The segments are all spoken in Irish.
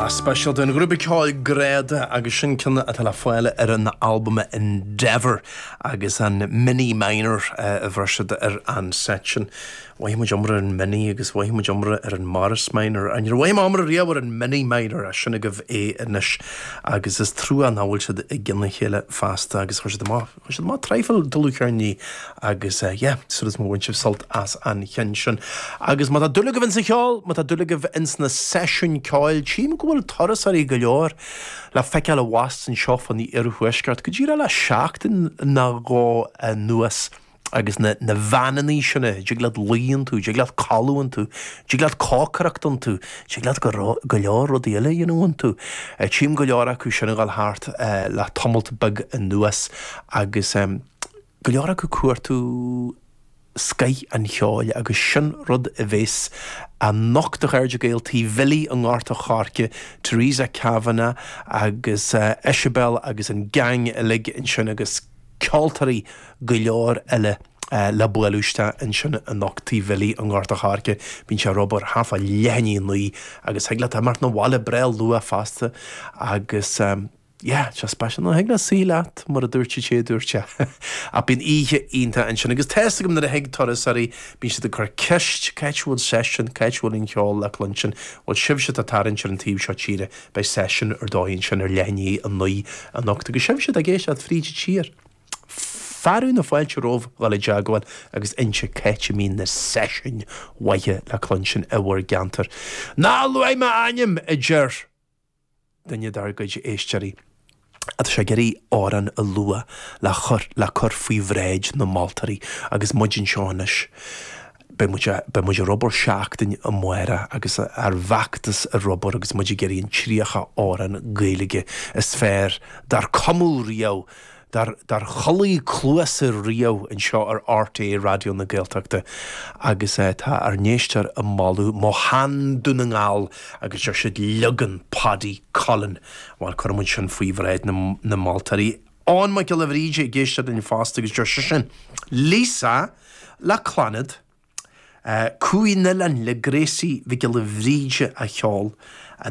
Speisialta den ghrúpa ceoil Gráda agus sin ceann atá le fáil ar an albam Endeavour agus an Mini Minor eh, a bheir siad ar an set sin. Mhothaigh muid iomrá ar an Mini agus mhothaigh muid iomrá ar an Morris Minor. Níor mhothaigh mé iomrá riamh ar an Mini Minor ach sin agaibh é anois agus is trua nach bhfuil siad i gcionn a chéile feasta agus chuir siad amach. Tá siad maith traidhfil dlúthcheirní agus yeah, sort is má bhain sibh sult as an cheann sin agus má tá dúil agaibh ins an cheol, má tá dúil agaibh ins na seisiúin ceoil, tchím go bhfuil turasóirí go leor le feiceáil abhus anseo fán iarthuaisceart go díreach le seachtain nó dhó anuas agus na veaineannaí sin, a dtig leat luí iontu, dtig leat codladh iontu, Tig leat cócaireacht iontu, tig leat go leor rudaí eile a dhéanamh iontu. Tchím go leor acu sin ag dul thart le tamalt beag anuas agus go leor acu ag cuartú scoith an cheoil agus sin rud a bhéas anocht, a chairde Gael, tigh Bhillí i nGort a' Choirce, Teresa Kavanagh agus Eisibeil agus an gang uilig ansin agus ceoltóirí go leor eile. le bualadh isteach ansin anocht tigh Bhillí i nGort a' Choirce. Bíonn sé ar obair thart fá leath i ndiaidh a naoi agus thig leat imeacht 'na bhaile breá luath fosta agus yeah, sé speisialta ná thig leat suí leat mar a dúirt an té a dúirt é. Ach bíonn oíche iontach ansin agus tá's agam nuair a thig turasóirí bíonn siad ag cur ceist c'áit a bhfuil seisiún, c'áit a bhfuil an cheol le cluinstin? Bhuel sibhse atá ag tarraingt ar an taobh seo tíre beidh seisiún ar dóigh ansin ar leath i ndiaidh a naoi anocht agus sibhse atá ag éisteacht fríd an tír, fearadh na fáilte romhaibh dhul i dteagmháil agus inse c'áit a mbíonn na seisiúin mhaithe le cluinstin i bhur gceantar. Ná luaigh m'ainm! a deir duine dár gcuid éisteoirí agus é ag iarraidh amhrán a lua le cur faoi bhráid na moltóirí agus muid anseo anois. Beidh muid ar obair seachtain amárach agus ár bhfeachtas ar obair agus muid ag iarraidh an 30 amhrán Gaeilge is fearr dár cumadh riamh, dár chuala cluasa riamh anseo ar RTÉ Raidió na Gaeltachta agus tá ár n-éisteoir ag moladh Mo Shean Dún na nGall agus deir siad 'Leagan Paddy Cullen'. Bhuel, cuirfidh muid sin faoi bhráid na moltóirí. Eoin Mac Giolla Bhríde ag éisteacht linn fosta agus deir seisean, Liza le Clannad, Cumhaidh an Oileáin le Gracie Mhic Giolla Bhríde a cheol,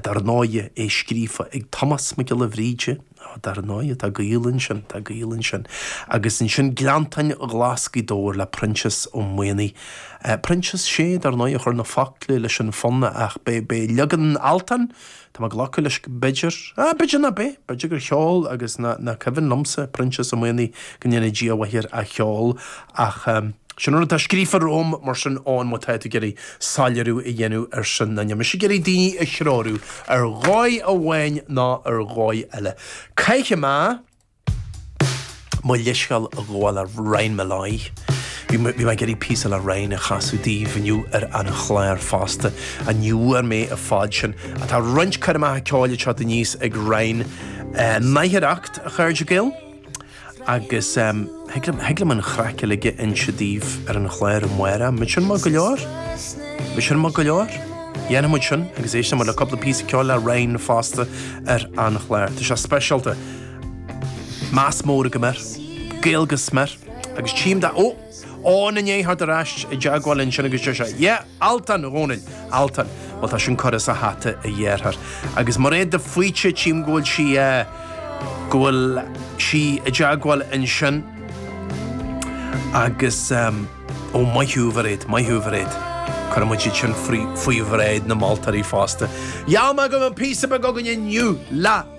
dar ndóigh, é scríofa ag Tomás Mac Giolla Bhríde, á dar ndóigh, tá gaol ansin, tá gaol ansin, agus ansin Gleanntáin Ghlas Ghaoth Dobhair le Proinsias Ó Maonaigh, Proinsias, sé, dar ndóigh, a chuir na focla leis an fonn ach b'é leagan Altan, Tá mé ag glacadh leis go mb'fhéidir, ah, b'fhéidir ná beidh, b'fhéidir gur cheol agus ná nach cuimhin liomsa, Proinsias Ó Maonaigh, go ndéana Dia a mhaith air, a cheol ach eh sin an rud atá scríofa romham mar sin Eoin má tá tú ag iarraidh soiléiriú a dhéanamh ar sin ná níl mise ag iarraidh daoine a threorú ar dhóigh amháin ná ar dhóigh eile. Caithfidh mé. Mo leithscéal a ghabháil le Ryan Molloy. Bhí mé ag iarraidh píosa le Ryan a chasadh daoibh inniu ar an chlár fosta, ach ní bhfuair mé a fad sin. Ach tá roinnt coirmeacha ceoil ag teacht aníos ag Ryan in aicearracht, a chairde Gael! Agus thig liom an chraic uilig a inse daoibh ar an chlár amárach. An sin maith go leor? An sin maith go leor? Dhéanfaidh muid sin agus éisteoidh muid le cúpla píosa ceoil le Ryan fosta ar an chlár. Tá sé speisialta! Meas mór agam air. Gael go smior. Agus tím, tá. Ó! Áine Ní Eithir ar ais i dteagmháil ansin agus deir sé, Yeah, Altan, a Dhónaill, Altan. Bhuel, tá sin curtha sa hata a dheartháir. Agus Mairéad de Faoite, tím go bhfuil sí, eh, go bhfuil sí i dteagmháil ansin. Agus, ehm, ó, maith thú, a Mhairéad, maith thú, a Mhairéad. Cuirfidh muid iad sin faoi bhráid na moltóirí fosta. Gheall mé go mbeadh píosa beag againn inniu le.